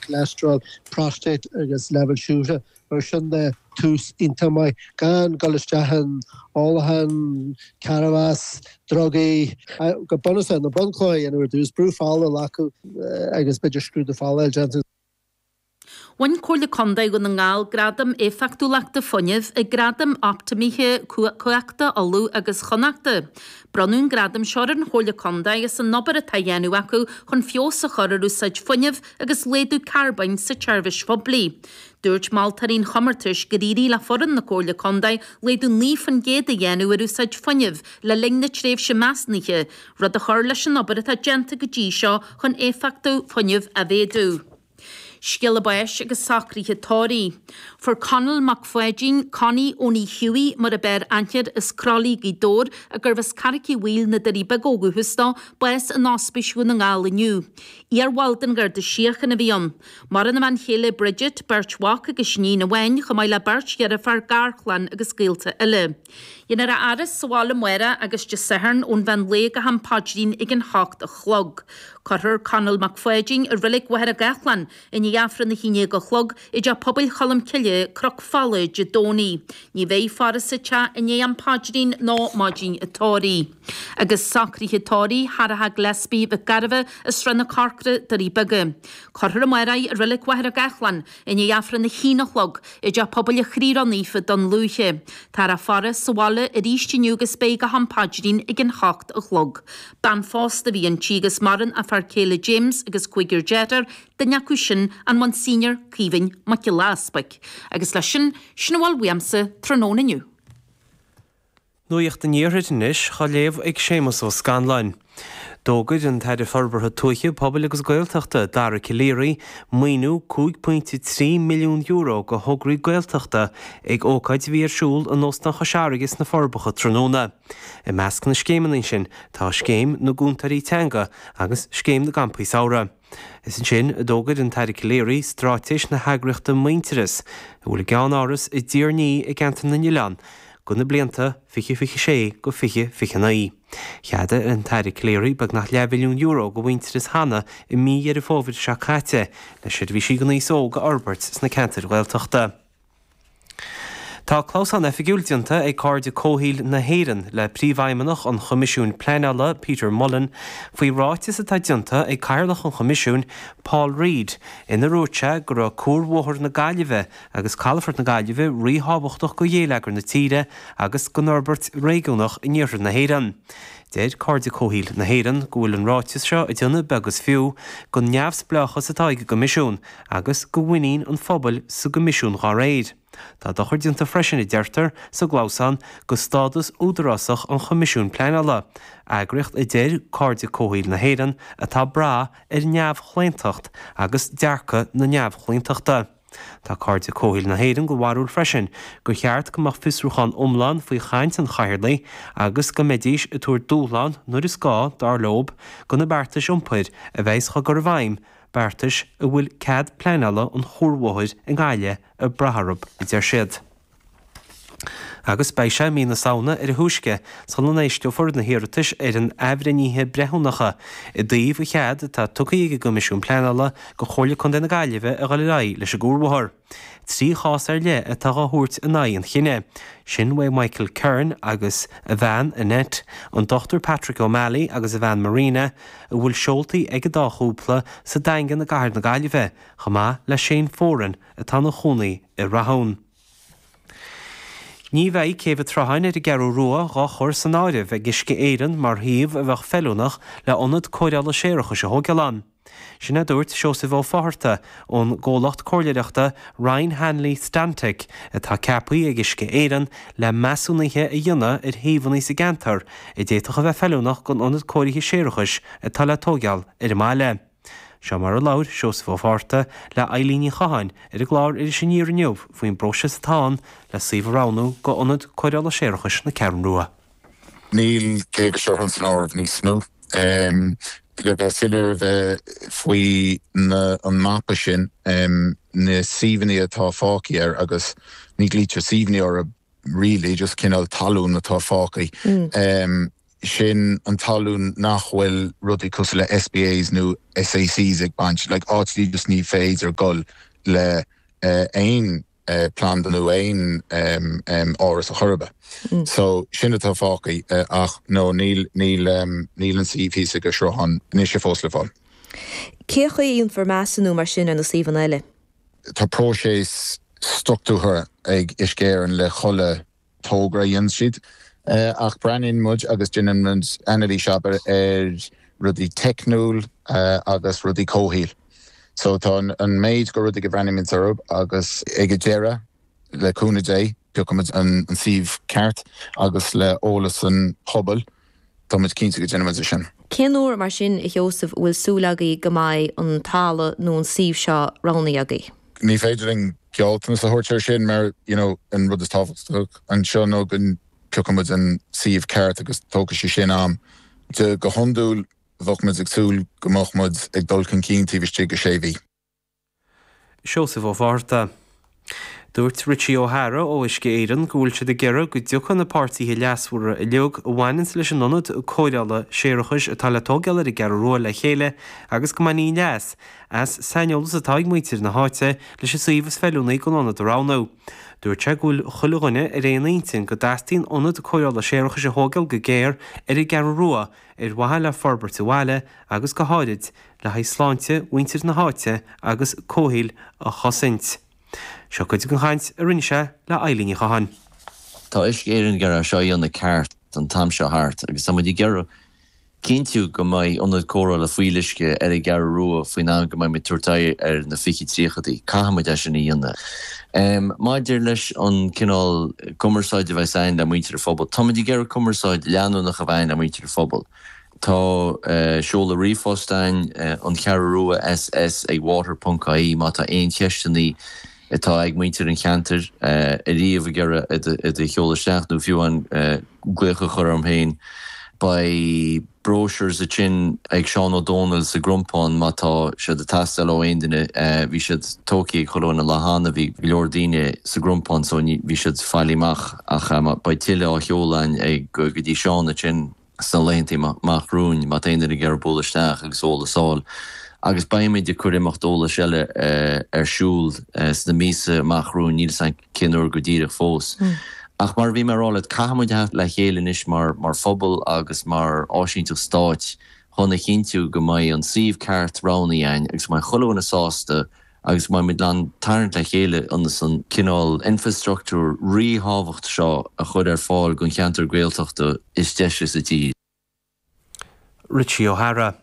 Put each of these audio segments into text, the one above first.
choleastrál, próstáit agus leibhéil siúcra, mar sin de, tús iontach maith gan dul isteach in ólachán, cearrbhás, drugaí, go bunúsach na bunchlocha a dhéanamh ar dtús, brú fola a ghlacadh agus b'fhéidir scrúdú fola a dhéanamh. Bhain Comhairle Contae Dhún na nGall Gradam Éifeachtúlachta Fuinnimh ag Gradaim Optamaithe Cumhachta, Uladh agus Chonnacht. Bronnadh an gradam seo ar an Chomhairle Contae as an obair atá á dhéanamh acu chun feabhas a chur ar úsáid fuinnimh agus laghdú carbóin sa tseirbhís phoiblí. Dúirt moltóirí an chomórtais gur éirigh le foireann na Comhairle Contae laghdú 9 faoin gcéad a dhéanamh ar úsáid fuinnimh le linn na tréimhse measúnaithe, rud a chur leis an obair atá déanta go dtí seo chun éifeachtacht fuinnimh a mhéadú. Scéala báis agus socruithe tórraimh. Fuair Conall Mac Pháidín, Connie Eoghain Hiúdaí, mar ab fhearr aithne air, as Croithlí Gaoth Dobhair, agus arbh as Carraic Uí Bhaoill Na Doirí Beaga ó dhúchas dó, bás in Ospís Dhún na nGall inniu. Iar-bhall den Gharda Síochana a bhí ann. Maireann a bhean chéile Bridget, beirt mhac agus iníon amháin, chomh maith le beirt dheirfiúr, garchlann agus gaolta eile. Déanfar a fhaire sa bhaile amárach agus Dé Sathairn ón mheán lae go ham paidrín ag an hocht a chlog. Cuirfear Conall Mac Pháidín i Reilig Mhachaire Gathlán i ndiaidh Aifreann a haon déag a chlog i dTeach Pobail Cholm Cille, Cnoc Fola Dé Domhnaigh. Ní bheidh faire sa teach i ndiaidh am paidrín ná maidin an tórraimh. Agus socruithe tórraimh Shorcha Gillespie Mhic Gairbheith, Srath na Corcra, Doirí Beaga. Cuirfear amárach í i Reilig Mhachaire Gathlán I ndiaidh Aifreann a haon a chlog i dTeach Pobail an Chroí Ró-Naofa, Dún Lúiche. Táthar á faire sa bhaile arís inniu agus beidh go ham paidrín ag an hocht a chlog. Bean phósta a bhí inti agus maireann a fear céile James agus cúigear dearthár, duine acu sin an Monsignor Caoimhín Mac Giolla Easbuic. Agus leis sin, sin a bhfuil uaimse tráthnóna inniu. Nuacht an Iarthair anois á léamh ag Séamus Ó Scanláin. D'fhógair an tAire Forbartha Tuaithe, Pobail agus Gaeltachta, Dara Calleary, maoiniú €5.3 milliún do thograí Gaeltachta ag ócáid a bhí ar siúl in Óstán Chois Fharraige sna Forbacha tráthnóna. I measc na scéimeanna sin tá Scéim na gCúntóirí Teanga agus Scéim na gCampaí Samhraidh. Is ansin a d'fhógair an tAire Calleary straitéis na heagraíochta Muintearas, a bhfuil a gceannáras i dTír an Fhia i gceantar na nOileán, do na blianta 2026-2029. Cheadaigh an tAire Calleary beagnach leathmhilliún euro do Mhuintearas cheana i mí Dheireadh Fómhair seo caite le seirbhísí don aos óg a fhorbairt sna ceantair Ghaeltachta. Tá clamhsán oifigiúil déanta ag Cairde Comhshaoil na hÉireann le Príomhfheidhmeannach an Choimisiúin Pleanála, Peter Mullan, faoi ráiteas atá déanta ag Cathaoirleach an Choimisiúin, Paul Reid, inar dhúirt sé go raibh cuarbhóthar na Gaillimhe agus calafort na Gaillimhe ríthábhachtach go ghéilleagar na tíre agus gon fhorbairt réigiúnach in iarthar na hÉireann. Deir Cairde Comhshaoil na hÉireann go bhfuil an ráiteas seo ag déanamh beag is fiú go neamhspleáchas atá ag an gCoimisiún agus go mhuinín an phobail sa gCoimisiún dhá réir. Tá dochar déanta freisin, a deirtear sa gclamhsán, go stádas údarásach an Choimisiúin Pleanála, eagraíocht a deir Cairde Comhshaoil na hÉireann atá ag brath ar neamhchlaontacht agus dearcadh na neamhchlaontachta. Tá Cairde Comhshaoil na hÉireann go bharúil freisin go cheart go mbeadh fiosrúchán iomlán faoi chaint an chathaoirligh agus go mbeidís ag tabhairt dúshlán nuair is gá, dar leo, go na beartais iompair a bheas á gcur i bhfeidhm beartais a bhfuil cead pleanála an chuarbhóthair i nGaillimh ag brath orthu, a deir siad. Agus beidh sé, mí na Samhna, ar a thúisce sula n-éisteofar na hiarratais ar na hathbhreithnithe breithiúnacha i dtaobh an chead atá tugtha ag an gCoimisiún Pleanála go Comhairle Contae na Gaillimhe a dhul ar aghaidh leis an gcuarbhóthar. Trí chás ar leith atá á thabhairt in aghaidh an chinnidh, sin ó Michael Kearns agus a bhean, Annette, an Dr Patrick O'Malley agus a bhean Marina, a bhfuil seoltaí ag an dá chúpla sa Daingean i gcathair na Gaillimhe, chomh maith le Shane Foran atá ina chónaí i Rathún. Ní bheidh céibh an tSrutháin ar an gCeathrú Rua dhá chur san áireamh ag Uisce Éireann mar shuíomh a bheadh feiliúnach le hionad cóireála séarachais a thógáil ann. Sin a dúirt Seosamh Ó Fatharta ón gcomhlacht comhairleireachta Ryan Hanley Stantec atá ceapaí ag Uisce Éireann le measúnuithe a dhéanamh ar shuíomhanna sa gceantar a d'fhéadfadh a bheith feiliúnach gon ionad cóirithe séarachais atá le tóigeáil ar an mbaile. Seo mar a labhair Seosamh Ó Fatharta le Eibhlín Ní Chatháin ar an gclár Iris Aniar inniu faoin bpróiseas atá ann le suíomh a roghnú go ionad cóireála séarachais na Ceathrún Rua. Níl céibh seo san áireamh níos mó. Le bheith soiléir a bheith faoi na an mapa sin, na suíomhanna atá fágtha air agus ní ghlaoitear suíomhanna orthu really, just cineál talún atá fágtha, sin an talún nach bhfuil rudaí cosúil le SPAs nó SACs ag baint, like áiteanna just ní féidir dul le aon. planda nó aon áras ar chor ar bith. So sin atá fágtha ach no níl an suíomh thíos ag an sruthán anois fós le fáil. Cé chaoi a dhéanfar measúnú mar sin ar na suíomhanna eile? Tá próiseas struchtúrtha ag Uisce Éireann le chodladh togra a dhéanann siad ach breathnaíonn muid agus déanann muid anailís abair ar rudaí teicniúil agus rudaí comhshaoil so tá an méid de rudaí go bhreathnaímid orthu agus ag an deireadh le cúnamh Dé piocfaidh muid an suíomh ceart agus le eolas an phobail Tá muid cinnte go ndéanfaidh muid é sin. Cén uair mar sin, a Sheosaimh, a bhfuil súil agaibh go mbeidh an talamh nó an suíomh seo roghnaithe agaibh? Ní féidir linn gealltanas a thabhairt air sin mar an rud is tábhachtacha anseo ná go bpiocfaidh muid an suíomh ceart agus tógfaidh sé sin am. Go hiondúil bheadh muid ag súil go mbeadh muid ag dul chun cinn taobh istigh de shé mhí. Seosamh Ó Fátharta. Dúirt Richie O'Hara ó Uisce Éireann go bhfuil siad ag iarraidh go dtiocfadh na páirtithe leasmhara uilig a bhaineanns leis an ionad cóireála séarachais atá le tógáil ar an gCeathrú Rua le chéile agus go mbainfí leas as saineolas atá ag muintir na háite leis an suíomh is feiliúnaí don ionad a roghnú. Dúirt sé go bhfuil chuile dhuine ar aon intinn go dteastaíonn ionad cóireála séarachais a thógáil go géar ar an gCeathrú Rua ar mhaithe le forbairt an bhaile agus go háirid le haghaidh sláinte mhuintir na háite agus comhshaol a chosaint. Seo cuid den chaint a rinne sé le Eilidh Ní Chatháin. Tá Uisce Éireann ag iarraidh seo a dhéanamh ceart an t-am seo thart agus tá muid ag iarraidh cinntiú go mbeidh ionad cóireála fuíolluisce ar an gCeathrú Rua faoin am go mbeidh muid ag tabhairt aghaidh ar na fiche tríochaidí. Caithfidh muid é sin a dhéanamh. Maidir leis an cineál cumarsáide a bheas againn le muintir an phobail, tá muid ag iarraidh cumarsáid leanúnach a bheith againn le muintir an phobail. Tá seoladh ríomhphost ann, An Cheathrú Rua SS ag water ponc ie má tá aon cheisteanna ag muintir an cheantair is féidir leo iad a sheoladh isteach nó fiú amháin glaoch a chur orm féin. Beidh brochures a'inn ag Seán Ó Domhnaill sa gCrompán má tá siad ag teastáil ó aon duine. Bhí siad tógthaí ag chuile dhuine an lá cheana, bhí go leor daoine sa gCrompán so bhí siad fáilithe amach ach beidh tuilleadh á sheoladh ann go dtí Seán a'inn. sna laethanta amach romhainn, má tá aon duine ag iarraidh bualadh isteach agus eolas a fháil, agus beidh muid ag cur imeacht eolais eile ar siúl sna míosa amach romhainn, níl 's a'm cén uair go díreach fós. Ach mar a bhí mé a' rá leat, caithfidh muid a theacht le chéile anois mar phobal agus mar áisínteacht stáit chun a chinntiú go mbeidh an suíomh ceart roghnaí a'inn agus beidh chuile dhuine sásta agus beidh muid in ann tarraingt le chéile ionas an cineál infreastruchtúir ríthábhachtach seo a chur ar fáil don cheantar Gaeltachta is deise sa tír. Richie O'Hara.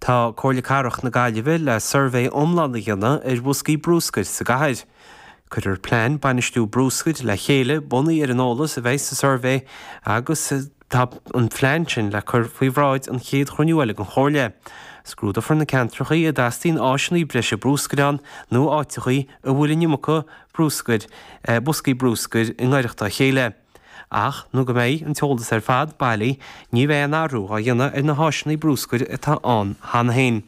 Tá Comhairle Cathrach na Gaillimhe le suirbhé iomlán a dhéanamh ar bhoscaí brúscair sa gcathair. Cuirfear plean bainistithe brúscair le chéile bunaithe ar an eolas a bheidh sa suirbhé agus. Tá an phlean sin le cur faoi bhráid an chéad chruinniú eile den Chomhairle. Scrúdófar na ceantracha a dteastaíonn áiseanna breise bruscair ann nó áiteacha a bhfuil an iomarca bruscair, boscaí bruscair i ngaireacht dá chéile. Ach nó go mbeidh an t-eolas ar fad bailithe ní bheidh aon athrú á dhéanamh ar na háiseanna bruscair atá ann cheana féin.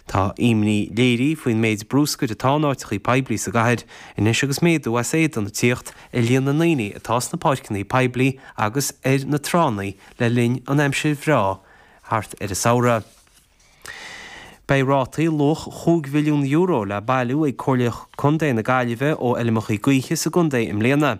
Tá imní léirithe faoin méid bruscair atá in áiteachaí poiblí sa gcathair anois agus méadú as éadan ag tíocht ar líon na ndaoine atá sna páirceanna poiblí agus ar na tránna le linn an aimsir bhreá thart ar an samhradh. Beidh rátaí luach €5 mhilliún le bailiú ag Comhairle Contae na Gaillimhe ó fheilmeachaí gaoithe sa gcontae i mbliana.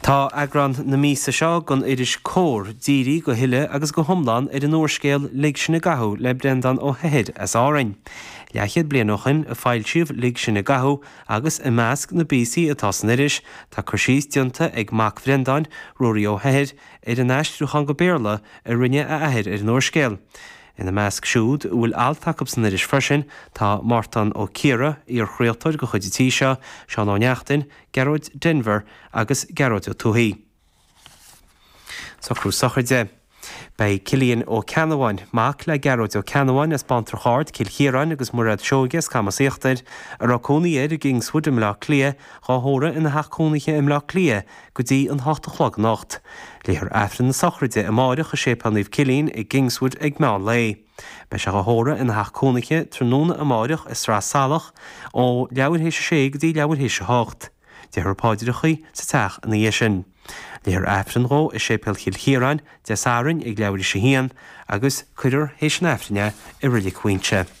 Tá eagrán na míosa seo den iris Comhar dírithe go huile agus go hiomlán ar an úrscéal Lig Sinn i gCathú le Breandán Ó hEithir as Árainn. Leathchéad bliain ó shin a foilsíodh Lig Sinn i gCathú agus i measc na bpíosaí atá san iris tá cur síos déanta ag mac Bhreandáin, Ruairí Ó hEithir, ar an aistriúchán go Béarla a rinne a athair ar an úrscéal. Ina measc siúd a bhfuil alt acu san iris freisin tá Mártan Ó Ciardha, iarchraoltóir de chuid an tí seo, Seán Ó Neachtain, Gearóid Denvir agus Gearóid Ó Tuathaigh. Socrú sochraide. Beidh Cillian Ó Ceannabháin, mac le Gearóid Ó Ceannabháin as Bántrach Ard, Cill Chiaráin agus Mairéad Seoige as Camas Íochtair, a raibh cónaí air i gKingswood i mBleá Cliath, dhá thórramh ina theach cónaithe i mBleá Cliath go dtí an hocht a chlog anocht. Léifear Aifreann na sochraide amáireach i Séipéal Naomh Cillín i gKingswood ag meán lae. Beidh sé á thórramh ina theach cónaithe tráthnóna amáireach i Sraith Salach ó leathuair théis a sé go dtí leathuair théis a hocht. Déarfar páidreachaí sa teach ina dhiaidh sin. Léifear Aifreann dhó i Séipéal Chill Chiaráin Dé Sathairn ag leathuair théis a haon agus cuirfear théis an Aifrinn é i Reilig Mhaínse.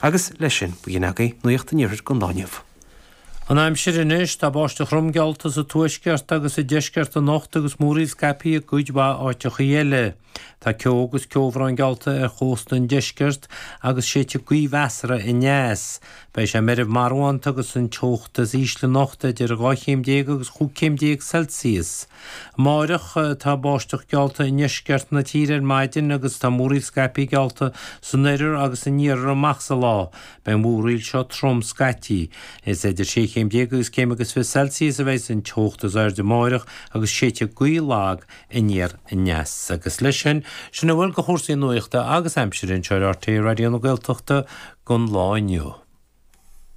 Agus leis sin, b'in agaibh nuaíocht an iarthair don lá inniu. An aimsir anois, tá báisteach throm geallta sa tuaisceart agus sa deisceart anocht agus múraíl scaipthe i gcuid mhaith áiteachaí eile. Tá ceo agus ceobhrán geallta ar chósta an deiscirt agus séidfidh gaoth mheasartha aneas. Beidh sé meirbh marbhánta agus an teocht is ísle anocht idir dhá chéim déag agus chúig céim déag Celsius. Amáireach, tá báisteach geallta i ndeisceart na tíre ar maidin agus tá múraíl scaipthe geallta san oirthear agus san iarthar amach sa lá. Beidh an mhúraíl seo trom scaití. Is idir sé chéim déag agus céim agus fiche Celsius a bheidh an teocht is airde amáireach agus séidfidh gaoth lag aniar aneas. Agus leis sin, sin a bhfuil de chúrsaí nuachta agus aimsire anseo ar RTÉ Raidió na Gaeltachta don lá inniu.